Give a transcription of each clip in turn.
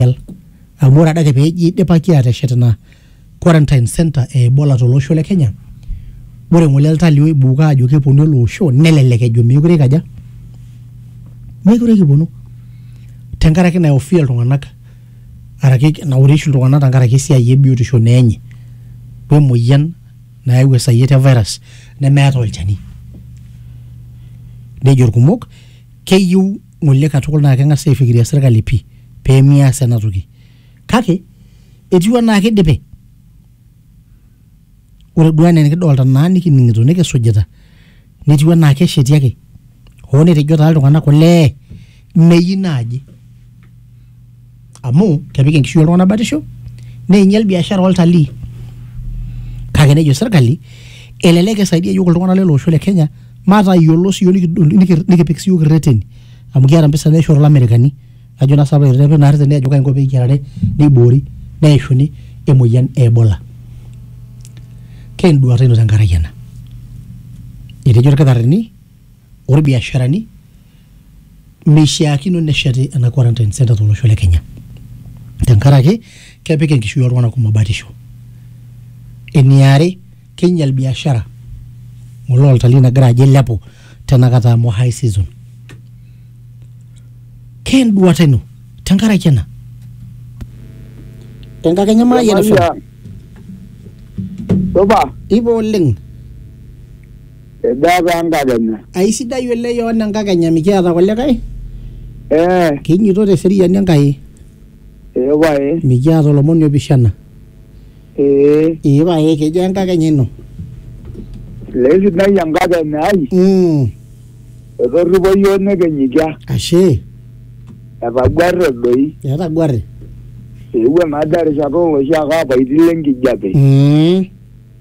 Kajal. Amu ore adake pee eji eidipaki aateshet ina quarantine center e Ebola to losho le Kenya, ore ng'ole iltalii oibuuka aajo keponu ele osho nelelek ejo meekure eikaja, meekure kiponu tenkaraki naihofia iltung'anak araki naure oshi iltung'anak tenkaraki esiai e biotisho naa enye we moyian nayau esayiet e virus nemeeta olchani. Nejo ilkumok keyieu ng'ole katukul naa keng'asi aifikiria serkali pii pee mias ena toki. Kake etiu enaa kidipe. Ore duo enaa enikidolta naa nikining'ito nikisujita netiu enaa kesheti ake hoo netejo taa iltung'anak olee meyieu naaji. amu kepik enkishui oltung'anak batisho neinyial biashara oltalii kake nejo sirkali elelek isaidia yiok iltung'anak lele osho le kenya matayiolo siyiok nikidol niki- nikipik siyiok irreteni amu kiata mpisai naishoru ilamerikani ajo naa sapa irreteni naa irreteni ajo kainko peyiarare neiboori neishuni emoyian e ebola kenduata ino tenkaraki ena etejo irkitarrini olbiasharani meishiakino nesheti ena quarantine center tolosho le Kenya tenkaraki kepik enkishui oltung'anak kumok batisho. Eniare, keinyal biashara ng'ole oltalii nagira ajo eilepu tenakata amu high season. Keenduata ino tenkaraki ena? Enkakenya Mayian FM. Supa. Ipa oleng. Edaa taa nkakenya. Aisidai oleng Yohana enkakenya mikiata kulikae. Ee. Kinyito te seriani Enkai. Ee pae. Mikiata olomoni opishana. Ee. Ee pae kejaa enkakenya ino? Lee sidai enkakenya ai. Mm. Etorripo iyiook nikinyikia. Ashe. Etaguarre doi. Etaguarre. Eewuo naa doi erishata oloshi ake apaitin le nkijape. Mm.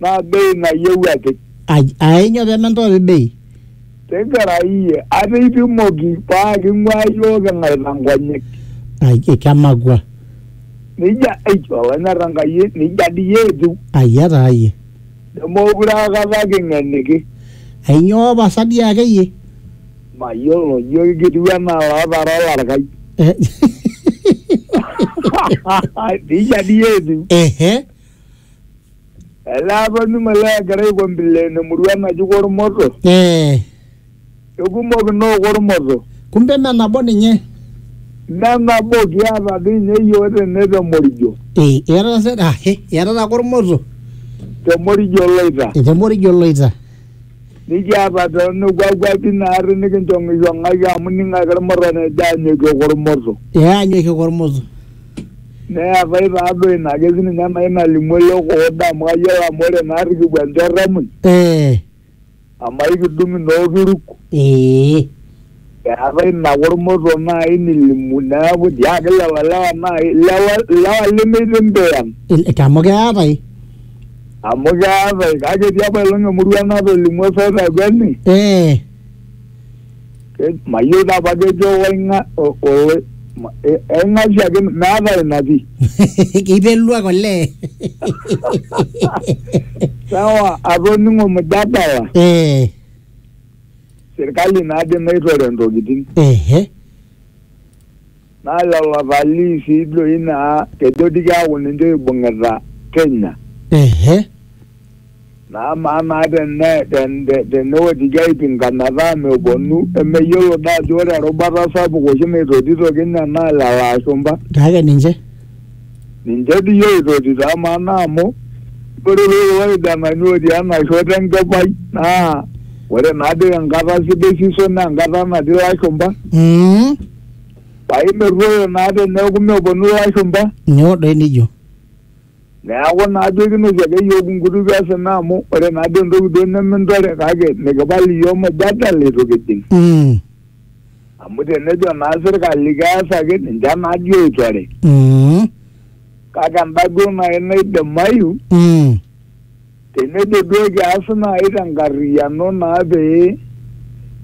naa bei nayieu apik Aj- Ainyo pementoopi bei? tigila iyie ate ipimoki paa king'ua iyiook ing'aita nkonyek Ai kemakua. nija eitu olonyor enkai nija dii iyie etiu Ayia taa iyie. nemookure akata king'eniki Ainyoo pasa dii akeyie? mayiolo ijo kitiu enaa lootara olarkai Eh, nija dii iyie etiu Ehe. Ele apa numa le egira aikombile ina murua naji Kormoto. Eh, Kekumok inoo Kormoto. kumbe me nabo ninye. Mme nabo kiata dii ninye iyiook tene te Morijo. Eh, iatata se ah, eh, iatata Kormoto. Te Morijo Loita. Te Morijo Loita. Nikiata too nekua kuapi naarri nikinchong'ishong'aki amu ning'ake ilmurran ejo aanyokie Kormoto. Eh, anyokie Kormoto. Neetae taa duo ina ake sii ninye nai nalimu ele okoda amu kayiolo amu ore naa rikipuo enchorro emuny Eh, amu aikidung inookiruk ee. eetae ina kormoto nai nilimu neeku dii ake lelo lewa nai lewa lewa lemeitimbiyan Il- te- Amu keetae. amu keetae kake etii apailong emurua natolimuo soi te Kweni Eh, Eh, mayieu taa apa kejo oing'a- o- o- ma- eh, eng'asia ake meeta ina pii Keiteruak olee. sawa atoning'o mjadala Eh, sirkali naadi naitore ntokitin ehe. Naa lelo talii sii doi naa kejo dii keaku ninche oibung'ita Kenya. Ehe. Naa amaa naa tene ten- te- tenewotiki aipinga metaa meponu emeyiolo doi ajo ore erubata sapuk oshi naitotito Kenya naa lelo ashumpa. Kake ninche. Ninche dii oitotito amaa naa amu ore doi kulo kijanani otii ena shoto enkipai naa ore naa doi enkata sidai season naa enkata natii ilashumpa. Mm. paa imerruoyo naa teneeku meponu ilashumba nyoo doi nijo neeku naa duo kinosie ake iyiook inkutukie osina amu ore naa duo entoki duo nemintore kake mikipal iyiook mujadala itu kijing Mm, amu tenejo naa sirkali keesaki ninche naa dii oitore mm, kake enda duo naaji naidimayu mm, tenejo duo kias naaji tenkarriyiano naa pee